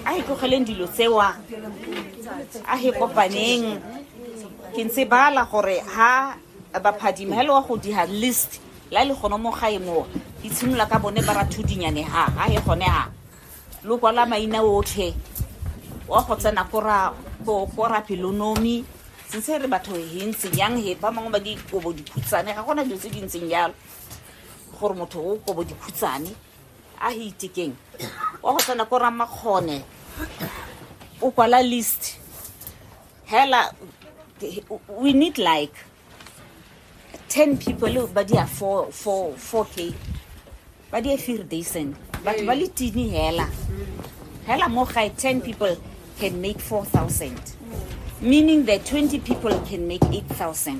a e tlogeleng dilo tsewa a he kopaneng ke ntse bala gore ha baphadima he le wa go diha list la e le gone mo gae mowa di tshimolola ka bone ba rathodinyane ha ha he gone ha lo kwala maina otlhe wa go tsena kora pelonomi sentse re batho he ntseng yang he ba mangwe ba dikobo dikhutsane ga gona dilo tse di ntseng jalo gore motho o kobo dikhutsane a he itekeng wa go tsena ko ramakgone o kwala list hela we need like 10 people ba di ya 4k ba di ya fear daysend batho ba le tini hela hela mo gae 10 people can make 4000 meaning that 20 people can make 8000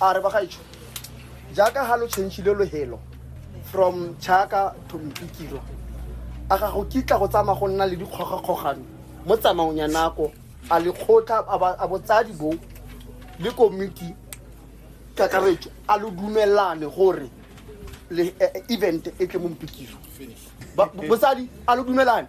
a re bagaetsho jaaka ga lo changile lohelo from chaka to mpikiro a ga go kitla go tsamaya go nna le dikgogakgogano mo tsamaong ya nako a lekgotla a botsadi bo le komiti kakaretso a lo dumelane gore le e, e, event e tle mo mpikiro botsadi a lo dumelane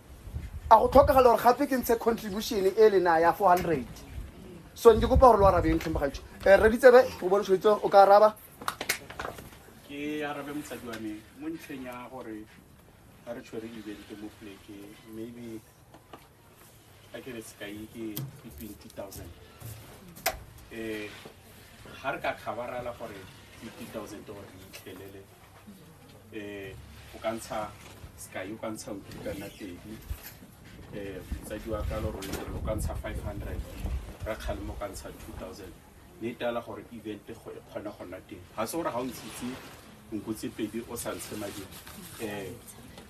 a go tlhokagala gore gape ke ntshe contribution e le na ya four hundred so nke kopa gore lo arabeng tlhompagaitso um re ditsebe go bone tshwanetse o ka araba ke arabe mosadi wa me mo ntlheng ya gore ga re tshwere event mo pleke maybe ka ke re sekai ke twenty thousand um ga re ka kgabarela gore fifty thousand gore re itlhelele eh o ka ntsha sekai o ka ntsha utlwi ka nna tedi um eh, motsadi wa ka loro o ka ntsha five hundred rakgalemo o ka ntsha two thousand ne e tala gore event e kgone go nna teng ga se gore ga o ntshitse nko tse pedi o sa ntshe madi um eh,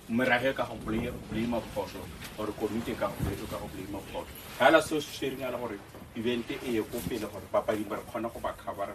mmerage ka go blame phoso or komite ka go ka go blame phoso ga la so sharing a le gore event e ye ko pele gore bapading ba re kgone go ba covera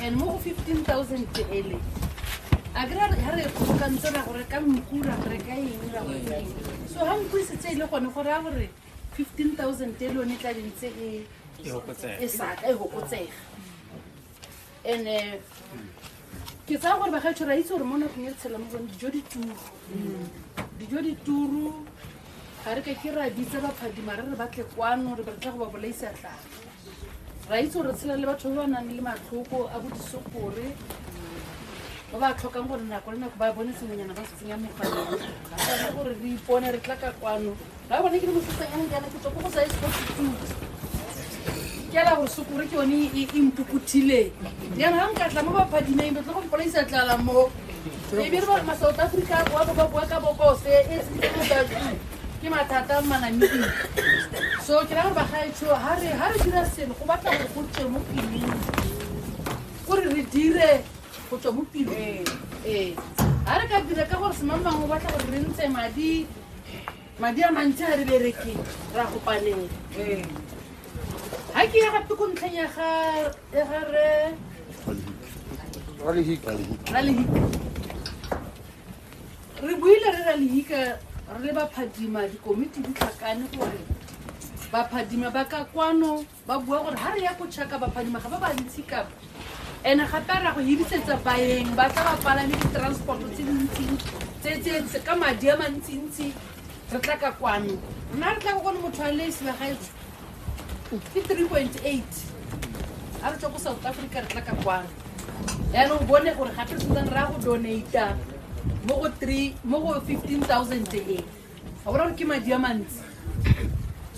and mo go fifteen thousand ele a kry ga re kgobokantse ra go reka nku ra go reka eng ra go reka eng so ga nku e setse e le gone go raya gore fifteen thousand e lone tla dintse e e saka e gokotsega and eh, ke tsaya gore bagaetsho ra itse gore mo nakong e tshela mo gone dijo dituru dijo dituru ga re ka ke ra bitsa baphadima re re batle kwano re re tla go ba bolaisa tlang Re a itse gore tshela le batho ba ba nang le matlhoko a bodisokore ba ba tlhokang gore nako le nako ba bone sengwenyana ba se tsenya mogaleng aa gore re ipone re tla ka kwano ba bone ke le mosetsanyane jana ke tsoko go saye sekotutu kela gore sokore ke yone e e mpukuthileng yana ga nkatla mo baphadimeng re tlo go mpolaisa tlala mo ebile ba re ma-south africa boa bo ba boa ka bokose e se ke mathata manameding so ke raya bagaetsho ga re ga re dira seno go batla gore go tswe mo peleng gore re dire go tswa mo peleng ee ga re ka dira ka gore semamang o batla gore re ntshe madi madi a mantsi a re bereke ra go palela ga ke ya gape ko ntlheng ya ga ya ga re Rally Hick. ralehik re buile re ra leika re le baphadima dikomiti di tlhakane gore baphadima ba ka kwano ba bua gore ga re ya go chaka baphadima ga ba ba ntsi kapa and gape a ra go hirisetsa baeng ba tla ba palame di-transporto tse dintsintsi tsetseetse ka madi a mantsintsi re tla ka kwano nna re tla ko kone motho a le e sebagaetso ke 3.8 a re tswa ko south africa re tla ka kwano yaanong bone gore gape re sentsane raya go donata mo go 15000 tse ee ga bona gore ke madi a mantsi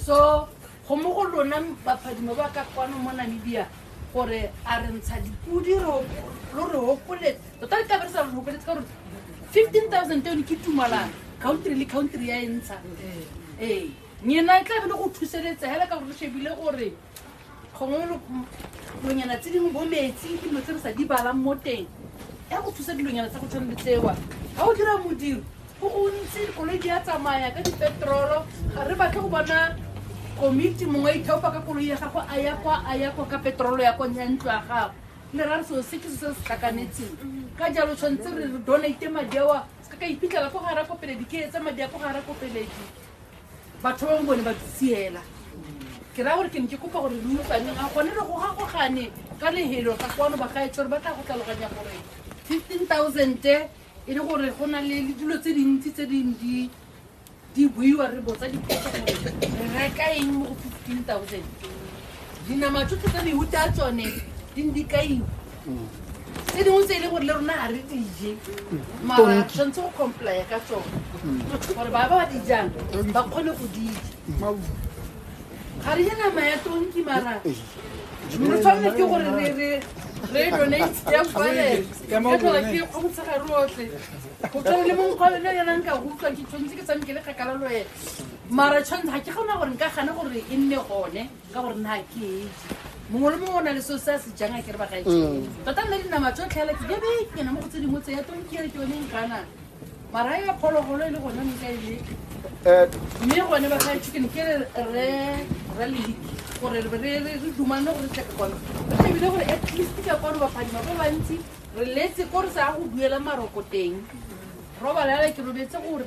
so go mo go lona baphadimo ba ka kwano mo namibia gore a re ntsha dipodi lo re gopole tota le kabe re sa re gopoletse ka gore fifteen thousand tone ke tumalana country le country ya e ntsha ee nyena e tla be le go thuseletsa hela ka gore re shebile gore gongwe dilonyana tse dingwe bo metsi ke dilo tse re sa di balang mo teng ya go thusa dilonyana tsa go tshwane le tsewa ga o dira modiro go gontsi dikoloi di ya tsamaya ka dipetrolo ga re batle go bona komiti mongwe a ithaopa ka koloi ya gago a ya kwa a ya kwa ka petrolo ya kwa ya ntlo ya gago le ra re seo se ke se se se tlhakanetseng ka jalo tshwanetse re re donate madi awa se ka ka iphitlhela ko gara kopeledi ke etse madi a ko gara kopeledi batho ba bangwe bone ba tsiela ke raya gore ke ne ke kopa gore leutsaneng a gone re go gagogane ka lehelo ga kwano ba gaetse gore ba tla go tlhaloganya gore fifteen thousand e le gore go na le le dilo tse dintsi tse ding di di buiwa re botsa dipotso gore re reka eng mo go fifteen thousand dinama tsotlhe tsa mehuta a tsone di ne di kaiwa tse dingwe tse e leng gore le rona ga re dije mara tshwanetse go complya ka tsone gore ba ba ba dijang ba kgone go dija ga re je nama ya tonki mara re tshwanne ke gore re re re donate ya mfalela ya tlhola ke kgobotshega rotlhe go tshwana le mongwe kgwale le yena nka go utlwa ke tshwanetse ke tshameke le kgakala le wena mara tshwanetse ga ke kgona gore nka gane gore e nne gone ka gore nna ga ke etse mongwe le mongwe o na le so se a se jang a kere ba gae tota nna dinama tsotlhela ke bebe ke nama go tse dingwe tse ya tong ke ere ke yone nkana mara ya phologolo e le gone nka ile Eh, mme gone ba gaetsho ke ne ke re re re leke gore re re re re dumane gore re tle ka kwano re tlebile gore at least ka kwano baphadima ba bantsi re letse ko re sa ya go duela maroko teng robalala ke robetse gore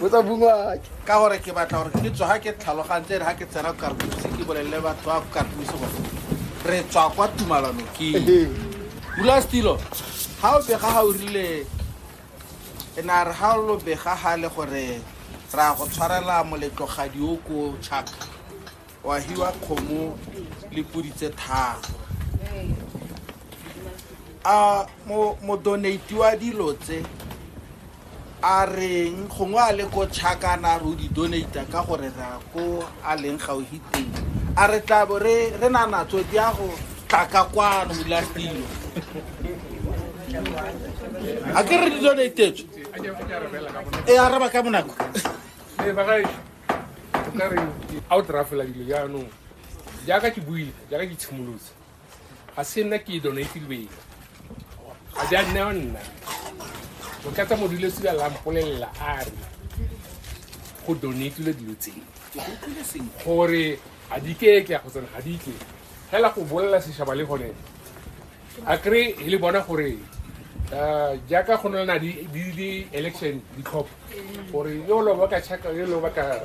botsa bungwake ka gore ke batla gore ke tswa ga ke tlhalogantse re ga ke tsena ko kartusi ke bolelele batho ba ko kartusi gore re tswa kwa tumalano ke bula stilo ga o bega ga o rile e na re ga lo bega ga le gore ra go tshwarela moletlogadi o ko chaka Wa hiwa kgomo le podi tse tharo. A mo donate wa dilo tse a reng gongwe a le ko chakana re o di donate ka gore re a ko a leng gaufi teng a re tlabo re re na natso di ya go tla ka kwano molatilo a ke re di donatetswe e araba ka bonako o ka re a o drafola dilo jaanong jaaka ke buile jaaka ke tshimolotse ga se nna ke donate lweng ga di a nne wa nna o tlatsa modulesi ka lampolelela a re go donatile dilo tse gore ga di kekla kgotsane ga di ke fela go bolelela sešaba le gone a kry le bona gore um jaaka go na le di-election ditlhopho gore yo lo ba ka chaka yo lo ba ka